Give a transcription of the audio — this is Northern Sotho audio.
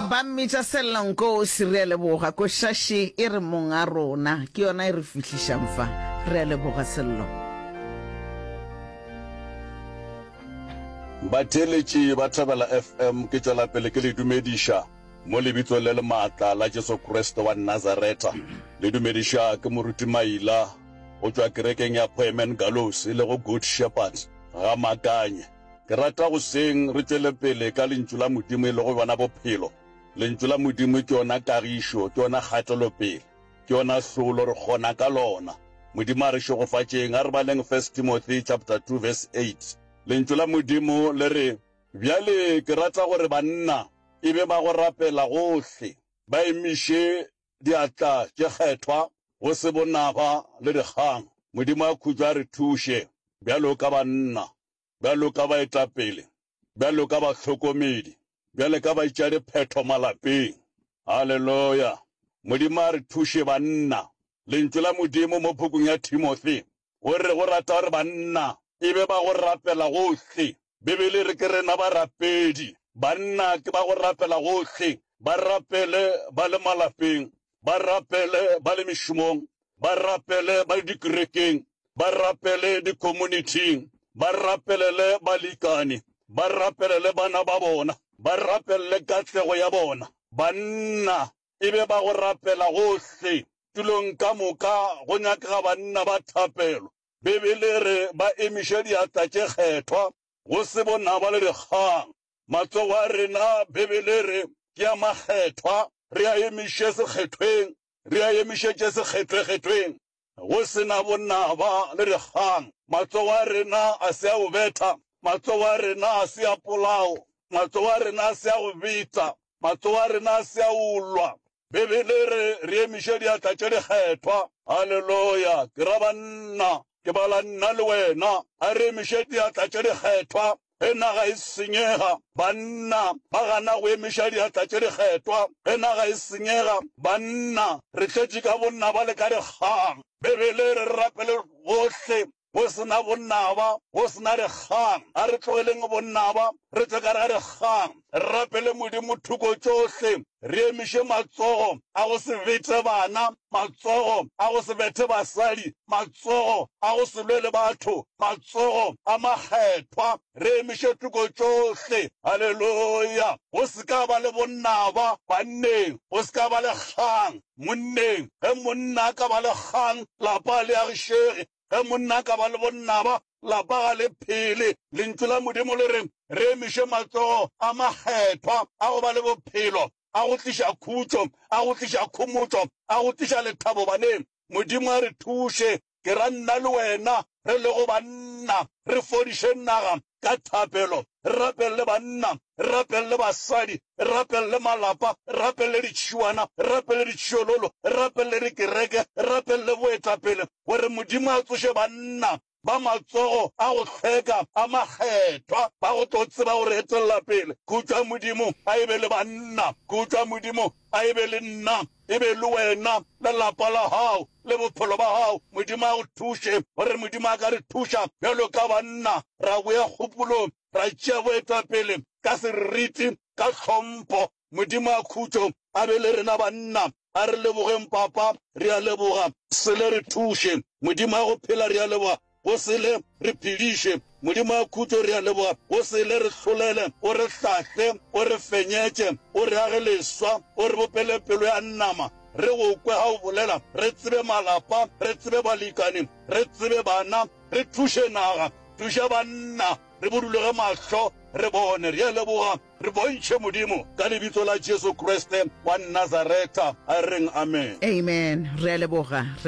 Ba mmitša Sella Nkosi, re a leboga. Košaši e re mong a rona, ke yona e re fihlišang fa. Re a leboga Sello. Batheeletši ba Thobela FM ke tšwela pele ke le dumediša mo lebitsong le le maatla la Jesu Kriste wa Nazareta. Le dumediša ke Moruti Maila go tšwa kerekeng ya Poemen Gallows le go Good Shepherd Gamakanye. Ke rata go seng re tšwele pele ka Lentšu la Modimo e lego yona bophelo. Lentšu la Modimo ke yona kagišo, ke yona kgatelopele, ke yona hlolo, re kgona ka lona. Modimo a re šegofatšeng. A re baleng First Timothy chapter 2 verse 8. Lentšu la Modimo le re, Bjale ke rata gore banna e be ba go rapela gohle, ba emiše diatla tše kgethwa, go se bonaba le dikgang. Modimo a khutšo a re thuše bjalo ka banna. bjalo ka baetapele, bjalo ka bahlokomedi, bjale ka baitšadiphetho malapeng. Haleloya! Modimo a re thuše, banna. Lentšu la Modimo mo pukung ya Timothy, go re o rata gore banna e be ba go rapela gohle. Bibele e re ke rena barapedi. Banna ke ba go rapela gohle, ba rapele ba le malapeng, ba rapele ba le mešomong, ba rapele ba le dikerekeng, ba rapele dikomunithing, ba rapelele balikani, ba rapelele bana ba bona, ba rapelele katlego ya bona. Banna e be ba go rapela gohle. Tulong ka moka go nyakega banna ba thapelo. Bibele e re ba emiše diatla tše kgethwa, go se bonaba le dikgang. Matsogo a rena, Bibele e re ke a makgethwa, re a emiše sekgethweng re a emišetše sekgethwekgethweng go se na bonnaba le dikgang. Matsogo a rena a se a go betha, matsogo a rena a se a polao, matsogo a rena a se a go betsa, matsogo a rena a se a go lwa. Bibele e re re emiše diatla tše dikgethwa. Haleloya! Ke ra banna, ke bala nna le wena. A re emiše diatla tše dikgethwa Ge naga e senyega, banna ba gana go emiša diatla tše dikgetwa. Ge naga e senyega, banna re tletše ka bonnaba le ka dikgang. Beibele e re re rapele bohle go se na bonnaba, go se na dikgang. A re tlogeleng bonnaba, re tšwe ka gare ga dikgang. Re rapele Modimo thoko tšohle, re emiše matsogo a go se bete bana, matsogo a go se bethe basadi, matsogo a go se lwe le batho, matsogo a makgethwa. Re emiše thoko tšohle. Haleluya! Go se ka ba le bonnaba banneng, go se ka ba le kgang monneng. Ge monna a ka ba le kgang, lapa le agišege. Ge monna a ka ba le bonnaba, lapa ga le phele. Lentšu la Modimo le re re emiše matsogo a makgethwa a go ba le bophelo, a go tliša khutšo, a go tliša khomotšo, a go tliša lethabo baneng. Modimo a re thuše, ke ra nna le wena re lego banna, re fodiše naga ka thapelo, re rapelele banna, re rapelele basadi, re rapelele malapa, re rapelele ditšhiwana, re rapelele ditšhiololo, re rapelele dikereke, re rapelele boetapele gore Modimo a tsoše banna ba matsogo a go hlweka a makgethwa ba go tlo tseba go re etelela pele. Khutšwa Modimo, a e be le banna. Khutšwa Modimo, a e be le nna. E be e le wena, le lapa la gago, le bophelo ba gago. Modimo a go thuše. O re Modimo a ka re thuša bjalo ka banna ra boya kgopolong, ra tšea boetapele ka seriti, ka tlhompho. Modimo a khutšo a be le rena banna. A re lebogeng, Papa, re a leboga. Sele, re thuše. Modimo a go phela, re a leboga. go sele re phediše. Modimo wa khutšo, re a leboga, go sele re hlolele, o re hlahle, o re fenyetše, o re age leswa, o re bopele pelo ya nama, re go kwe ga o bolela, re tsebe malapa, re tsebe balikani, re tsebe bana, re thuše naga, thuša banna, re buduloge mahlo, re bone. Re a leboga, re bontšhe, Modimo, ka Lebitso la Jesu Kriste wa Nazaretha, a reng, Amen. Amen. Re a leboga. Re.